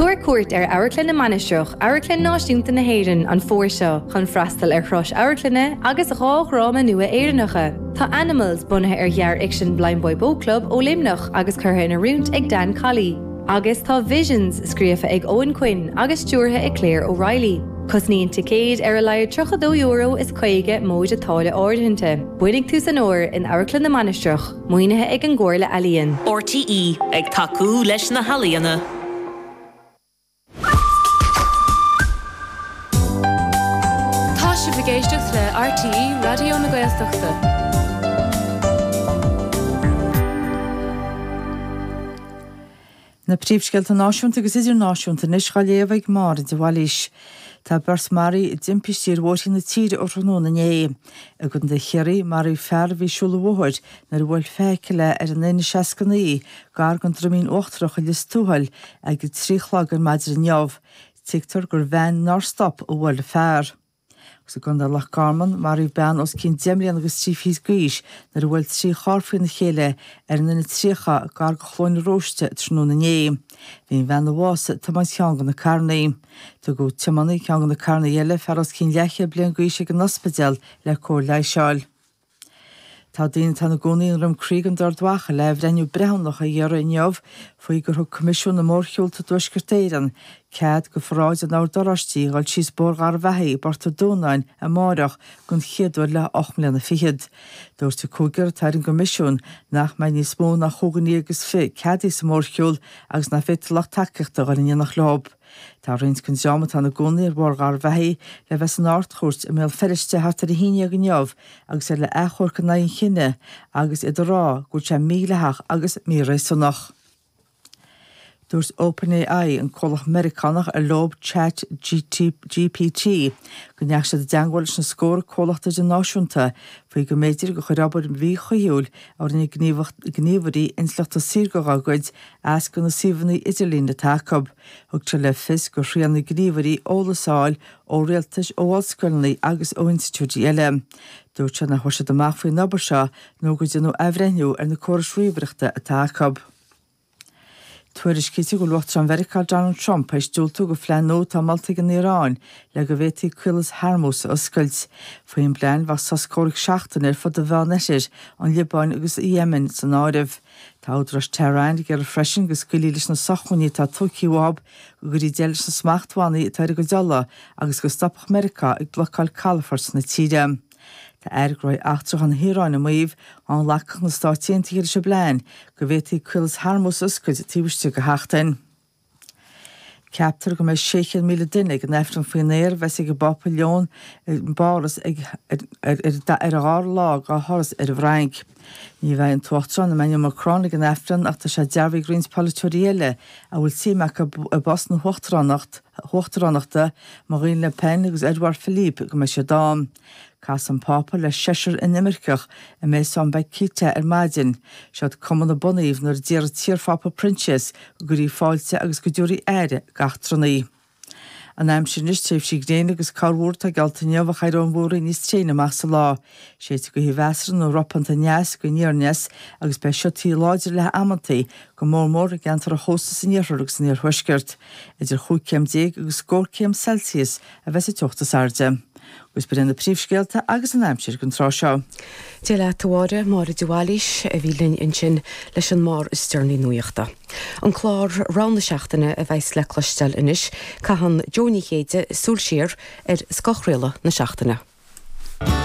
Tabhair cuairt ar Amharclann na Mainistreach, Amharclann Náisiúnta na hÉireann, an fómhar seo chun freastal ar thuras amharclainne agus dhá dhráma nua Éireannacha. Tá Animals, bunaithe ar ghearrfhicsean Blindboy Boatclub ó Luimneach agus curtha in oiriúint ag Dan Colley, agus tá Visions, scríofa ag Eoghan Quinn agus stiúrtha ag Claire O'Reilly. Cosnaíonn ticéid ar a laghad €32.50 móide táille áirithinte. Bainfidh tú san uair in Amharclann na Mainistreach. Maoinithe ag an gComhairle Ealaíon. RTÉ ag tacú leis na healaíona. Tá sibh ag éisteacht le RTÉ Raidió na Gaeltachta. Na príomhscéalta náisiúnta agus idirnáisiúnta anois dhá léamh ag Máire de Bhailís. Tá beirt maraithe i dtimpistí ar bhóithre na tíre ó thráthnóna inné. I gContae Chiarraí, maraíodh fear a bhí ag siúl an bhóthair nuair a bhuail feithicil é ar an N69 gar don Droimín Uachtarach i Lios Tuathail ag a trí a chlog ar maidin inniu. Tuigtear gur veain nár stop a bhuail an fear. Agus i gContae Loch Garman, maraíodh bean os cionn deich mbliana agus trí fichid d'aois nuair a bhuail trí charr faoina chéile ar an N30 gar do Chluain an Róistigh tráthnóna inné. Bhí an bhean a bhásaigh ag tiomáint ceann de na carrannaí. Tugadh tiománaí ceann de na carrannaí eile, fear os cionn leathchéad bliain d'aois, ag an ospidéal le cóir leighis a fháil. Tá daoine atá ina gcónaí i nDroim Crí i gContae Ard Mhacha le athbhreithniú breithiúnach a iarraidh inniu faoi gur thug Coimisiún na Mórshiúlta i dTuaisceart Éireann cead do pharáid an Oird Oráistigh a dhul síos Bóthar Gharbhachaidh i bPort an Dúnáin amárach den chéad uair le hocht mbliana fichead. Dúirt an cúigear atá ar an gCoimisiún nach mbeidh níos mó ná chúig dhuine agus fiche ceadaithe sa mhórshiúl agus nach bhféadfadh lucht tacaíochta a dhul in éineacht leob. Tá roinnt den dream atá ina gcónaí ar Bhóthar Gharbhachaidh le bheith san Ard-Chúirt i mBéal Feirste thart ar a haon dhéag inniu agus iad le achomharc in aghaidh an chinnidh agus iad ag rá go bhfuil sé mídhleathach agus míréasúnach. Dúirt OpenAI, an comhlacht Meiriceánach ar leob Chat GPT, go ndeachaigh siad i dteangmháil leis na scórtha comhlacht idirnáisiúnta faoi go mb'fhéidir gur chuir obair mhíchuibhiúil a rinne gníomhairí intleachta saorga dá gcuid as do na suíomhanna idirlín atá acu. Tugtar le fios gur thriail na gníomhairí eolas a fháil ó rialtais, ó ollscoileanna agus ó institiúidí eile. Dúirt sé nach bhfuair siad amach faoin obair seo nó go ndearnadh athbhreithniú ar na córais ríomhaireachta atá acu. Tuairiscítear go bhfuil Uachtarán Mheiriceá Donald Trump tar éis diúltú do phlean nua atá molta ag an Iaráin le go bhféadfaí Caolas Hormuz a oscailt. Faoin bplean, bheadh sos comhraic seachtaine ar fud an Mheánoirthir, an Liobáin agus Éimin san áireamh. Tá údaráis Tehran ag iarraidh freisin go scaoilfí leis na sócmhainní atá tógtha uathub, go gcuirfí deireadh leis na smachtbhannaí atá ar a gcuid ola agus go stopfadh Meiriceá ag blocáil calafoirt na tíre. Tá Aire Gnóthaí Eachtracha na hIaráine ag maíomh, dá nglacfadh na Stáit Aontaithe leis an bplean, go bhféadfaí Caolas Hormuz a oscailt taobh istigh de sheachtain. Ceaptar go mbeidh 600,000 duine ag an Aifreann faoin aer a bheas ag an bPápa Leon i bPáras ar a dhara lá dá thuras ar an bhFrainc. Ní bheidh an tUachtarán Emmanuel Macron ag an Aifreann ach tá sé dearbhaithe ag roinnt polaiteoirí eile a bhfuil suim acu i bpost na huachtaránachta, Marine Le Pen agus Edouard Philippe, go mbeidh siad ann. Chas an Pápa le seisear inimirceach i Maison Bakhita ar maidin. Seod cumann a bunaíodh nuair a d'iarr an t-iar-Phápa Proinsias go gcuirfí fáilte agus go dtabharfaí aire d'eachtrannaigh. An aimsir anois, tréimhsí gréine agus corrmhúr atá geallta inniu ach éireoidh an mhúraíl níos tréine amach sa lá. Séidfidh gaoth mheasartha nó ropánta aneas go aniar aneas agus beidh siotaí láidre léi amantaí go mór mór i gceantar an chósta san iarthar agus san iarthuaisceart. Idir chúig céim déag agus scór céim Celsius a bheas an teocht is airde, agus b'iod iad na príomhscéalta agus an aimsir don tráth seo. Dia leat a Mháire, Máire de Bhailís a bhí linn ansin leis an mbarr is deireanaí nuachta. An clár Rogha na Seachtaine a bheas le cloisteáil anois, caitheann Jo Ní Chéide súil siar ar scoth chraoladh na seachtaine.